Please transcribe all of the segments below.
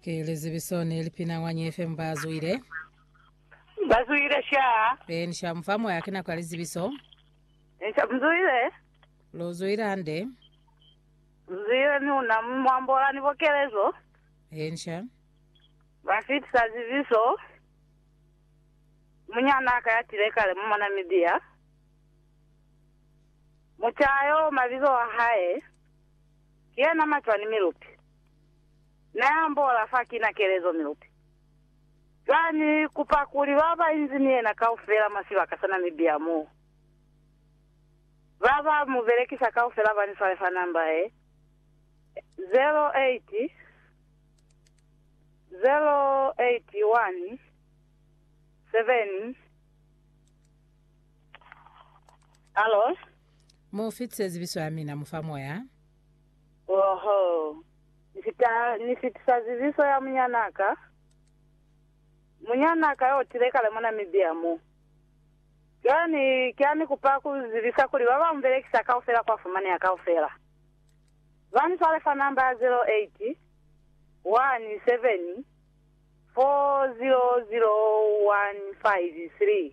Ki lizibiso ni lipina mwa Nye FM ba zwile. Ba zwile sha. E ni sha mufa moya ki nako ya lizibiso. Ni sha mzwile. Lu zwile hande. Mzwile ni una mwambola ni bokelezo. E ni sha. Ba fitisa zibiso. Munyana ka ya tile kale mo Namibia. Muchayo mabizo a hae. Ki yena macwani mi luti Na yambola fa kina kelezo mi luti Za ni kupa kuli ba ba inzi ni yena kaufela mwa sibaka sa Namibia mo Ba ba mu belekisa kaufela ba ni swale fa namba ye 080817 Hallo? Mu fitise zibiso ya mina mu fa moya. Oho, Ni fita, Ni fitisa zibiso ya munyana ka, munyana ka yo tile kale mwa Namibia mo. Cwale ni, ki a ni kupa ku zibisa kuli ba ba mu belekisa kaufela kwa fumaneha kaufela. Ba ni swale fa namba ya 0817400153.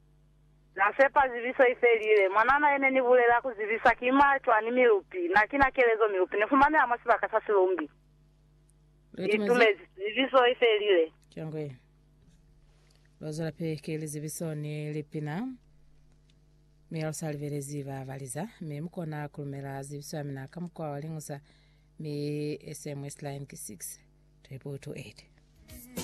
Na sepa zibiso i felile. Mwanana yene ni bulela ku zibisa ki mwa cwani milupi. Na kina kelezo milupi ni fumaneha mwa sibaka sa silumbi. Ni tumezi zibiso i felile. Cangwe. Lwa zwela pe ki li zibiso ni lipina. Mi lu sa libelezi ba baliza. Mi mu kona ku lumela zibiso ya mina ka mukwa wa liñusa. Mi SMS line ki 6 228.